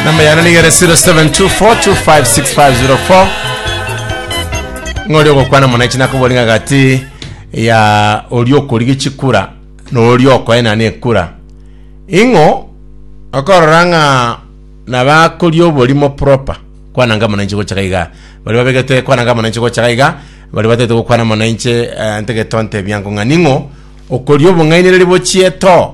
namba yane nigere 0724256504 ng'ori ogokwana muna echi nakobori ng'a gati ya ori okorigia chikura na ori okoenana ekura ing'o okorora ng'a nabakoria oborimo proper kwana nga muna inche gochaka iga bari babegete kwana nga muna inche gochaka iga bari batete gokwana muna inche eh, ntegetonte ebiango ng'a ning'o okoria obong'ainereria bochie to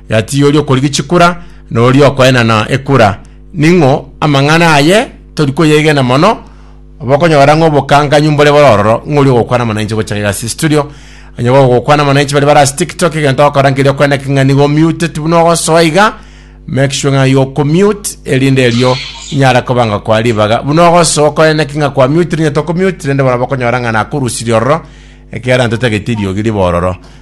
Gati oria okorigia chikura na oria okoenana ekura, ning'o amang'ana aye tori koyegena mono? Bokonyora ng'a obokanganyu mbore bore ororo, ng'o oria ogokwana amang'ana inche gocha egasi studio? Onye bagokwana amang'ana inche bari bare ase TikTok, egento ogokora nkeria okwena ki ng'a nigo omute ti buna ogosoa iga, make sure ng'a you commute erinde erio inyare kobanga koa ribaga. Buna ogosoa okoena ki ng'a kwa mute rinyete okomute rende bono bokonyora ng'a nakorusirie ororo, ekiagera ntotagete eriogi ribe ororo.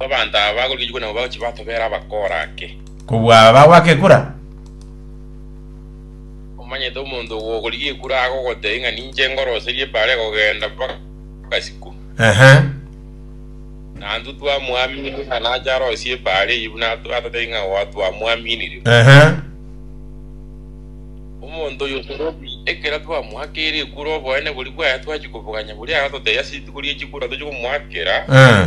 Abanto aba bagorigetigwa nabo bagochia batobera abakora ake. Kobua abagwa ake ekura. Omanyete omonto ogokorigia ekura agogotebia ng'a ninche ngoroserie bare kogenda mpaka isiko. Ehe. Na intwe twamoaminire ng'a nache arosie bare eyio buna ato- atatebie ng'a oa twamoaminire. Ehe. Omonto oyo torobi ekero twamoakeire ekura oboene boria bwaye twachia koboganya boria aratotebia ase rituko rie chikura tochia komoakera. Eh.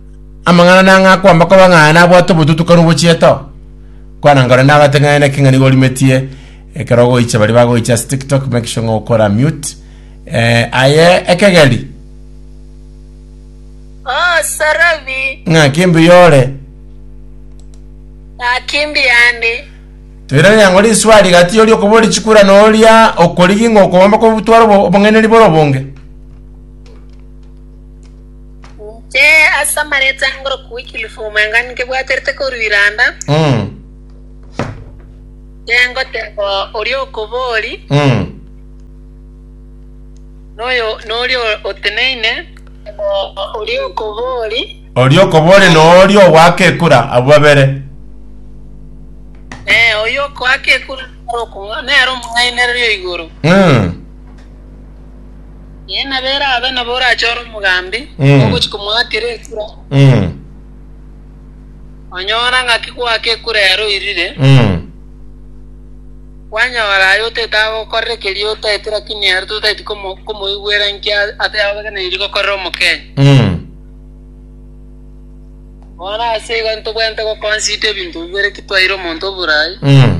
Amang'ana nang'aa kwamba koba ng'aa nabwate obotutu kare obochiete oo. Kwana nkore ndabate ng'aye naki ng'a nigo orimetie ekero ogoicha baria bagoicha ase tiktok make sure ng'a okora mute eh, aye ekegeri Oh Sorobi, ng'aki mbuya ore. ng'aki mbuya ande. Toiraneria ng'o riswari gati yoria okobori chikura na oria okorigi ng'a okobamba kobutwara obo- obong'aineri bore obonge. Inche ase amareeta angoroku Wycliffe Omanga nkebwaterete korwa Iranda, Mm. nengoteba oria okobori Mm. noyo noria oteneine, oria okobori Oria okobori noori ogoaka ekura abwo babere. eh, oyo okoaka ekura nere okomwa- nere omong'ainereria o igoro. Mm. Ee, nabo erabe nabo orache ore omogambi, Mm. ogochi komoakera ekura, Mm. onyora ng'aki goaka ekura ere oirire, Mm. kwanyora aye otaete agokorera ekeria otaete lakini ere totaeti komo- komoigwera inki a- ate abaganeirie gokorera omokenya. Mm. Bono ase igo ntobwenerete gokonsida ebinto bibere ki twaire omonto oborai, Mm.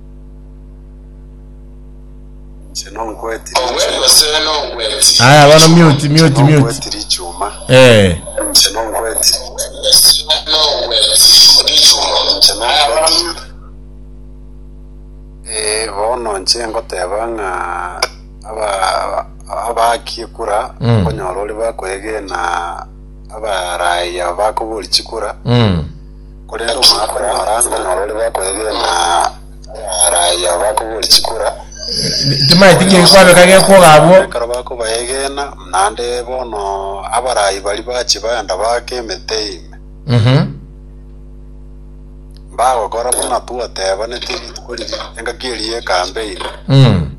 Aya bano mute mute mute. Eh. bono nche ngoteba ng'a aba abakie kura Mm. konyora ori bakoegena abaraia bakobori chikura Mm. Korende omoakore omorange norore bakoegena abaraia bakoboria chikura, Timaeti ki egekwabeka gekwoga abwo. ekero bakobaegena, naende bono abaraai baria bache baenda baaka emete ime, Mhm. mbagokora buna twatebanetie rituko riria engaki eria ekambe ime. Mm.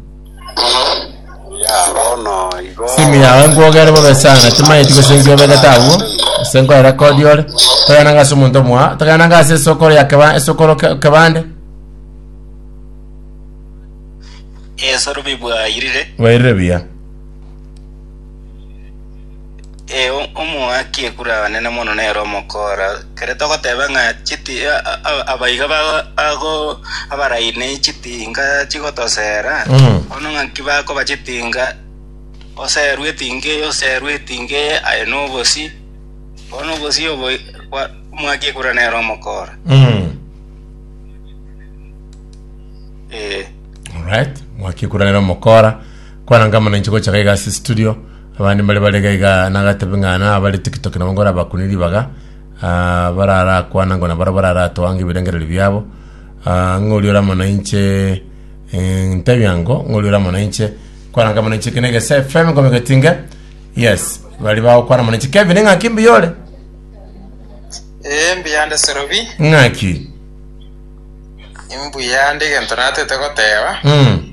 Simi yago enkwogere bobe sana timanyeti gose enki obegete agwo ase nkoerekodi ore togenanga ase omonto omoa togenanga ase esokoro ya keba esokoro ke- kebande Esoro bibwairire. bwairire buya Ee, omoaki ekura abanene mono nere omokoora. Ekero togoteeba ng'a chiti abaiga bago abaraine chitinga chigotoseera, bono ng'aki bakoba chitinga? Oseerwe etinga eye, oseerwe etinga eye, aye nobosi. Bono obosi obo bwa omoaki ekura nere omokoora. Ee. Alright, mwaki ekura nere omokoora. Kwana nkamana inche gocha gaiga ase studio. Abande mbare bare iga iga nagatebe ng'a nabare tikitoki nabo nkorabakunire ribaga, ah, bararakwanango na barabwo bararatoange ebirengererio biabo, ah, ng'a oria ore amo nainche eh, ntebia ngo ng'a oria ore amo nainche kwaranga amo nainche kene egese fm nkomegetinge yes bari bagokwana amo nainche kevin ng'aki mbuya ore Ee, mbuyande Serobi, ng'aki mbuyande egento natete goteba. mm.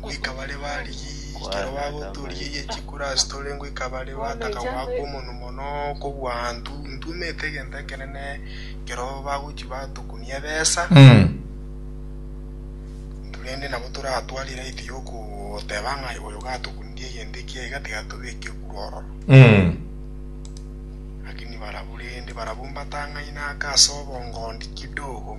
Ngoika bare barigie ekero bagotoorigeirie chikurasi tore ngoika bare bataka goaka omonwa mono kobua intwe intwe omanyete egento ekenene ekero bagochia batokunia ebesa intwe rende nabo toratware right yokoteba ng'a oyo gatokunirie egento ekiya iga tiga tobeke kure ororo lakini barabwo rende barabwo mbatang'aine ake ase obongondi kidogo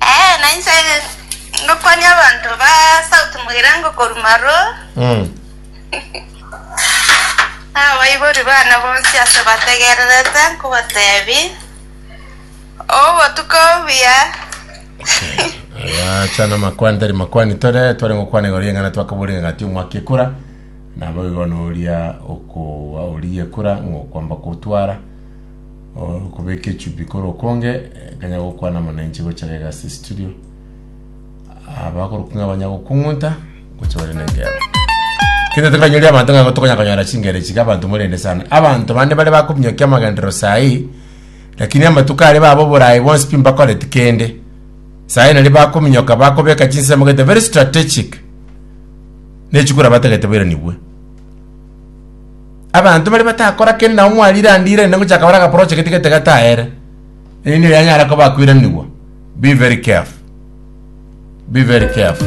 Ee, na inche ngokwania abanto ba South Mugirango korwa Maroo, Mm. nabaibori baane bonsi ase bategererete nkobateebie, obotuko obuya. acha namakwana tari makwani tore tware gokwana igoro y'eng'ana twakaboria ng'a ati omwaka ekura nabo igo noria okoa oria ekura ng'okwamba kotwara Oro kubeka echupi kore okonge kanya gokwana mono inche gocha gega ase studio abakorokung'a banya gokung'unta gocha bare nengero kende tokanyori abanto ng'a tokonya konyora chingero chiga abanto morende sana abanto bande bare bakominyokia amagenderero sahi lakini amatuko are baba oborayi bonsi pi mbakoreti kende sahi nari bakominyoka bakobeka chinsemo gete very strategic nechikura batagete bairanigwe abanto baria batakora kende nabo mwarirandirani na gochaka bare agaproche gete gete gataere erinde yanyare koba akwiranigwa be very careful be very careful